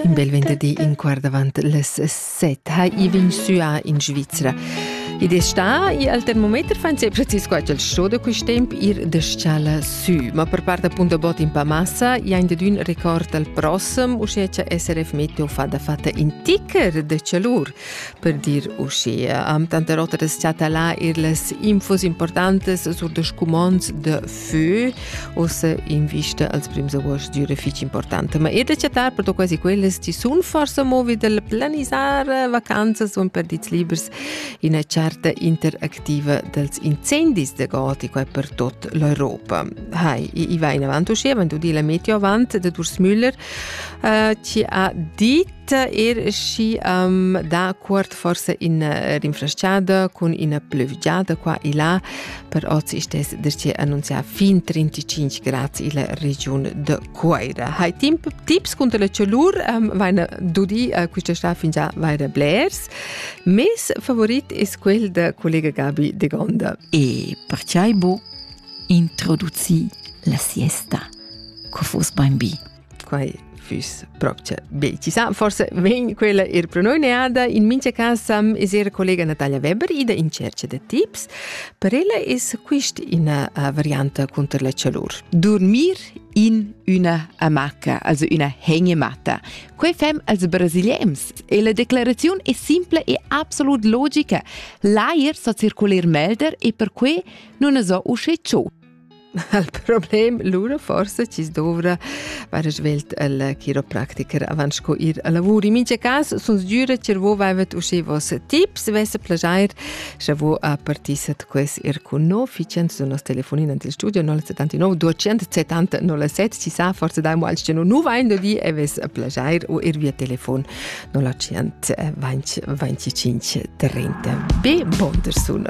In bel venderdi in quart avant les set ha i vegn suà in Svizra. Id è sta e al termometer fan se precis qua il show da quest temp ir de scala su. Ma per part appunto bot in pa massa, jain de dun record al prossem, usce che SRF Meteo fa da fatta in ticker de cialur, per dir usce. Am tante rotta des chatala ir les infos importantes sur de scumons de für ussa in vista als prims agost d'üra fich importanta. Ma ir da chattar per quasi quellas ti sun forsa movi dal planisar vacanzas u perdits libers ina charta interactiva dels incendis da Goti qua per tot l'Europa. Hai, i va in avant uschia, wenn du di la meteo avant de Durs Müller, uh, ci ha dit er schi um, da cuort forse in eh, rinfresciada cun ina plövgiada qua e là, per oz stess dir che annunzia fin 35 grad illa regiun de Coira. Hai timp tips contra la chalur um, vaina dudi uh, quista sta fin già vaira blers. Mes favorit es quel de collega Gabi de Gonda. E perciai bu introduci la siesta. Co fos bein bi. quai füss propcha be chi sa forse vegn quella ir pro noi neada in mincha cas am es era collega Natalia Weber ida in cerca da tips per ella es quist ina uh, varianta conter la chalur dormir in una amaca, also una hengematta. Quei fem als brasilians e la declarazione è simple e absolut logica. L'air sa circolir melder e per quei non es so usce ciò. Il problem lura forsa chi's dovra vaira svelt al chiropractiker avant sco ir a lavur. In mincha cas sun sgüra cha vo vaivat uschè voss tips, vess plaschair scha vo a partissat quels ir cun no. Ficiant sun nos telefonin ant il studio 079 270 07. Chi sa, forsa daimo als che nu vain do di e vess plaschair o ir via telefon 0125 30. Be bonter sun.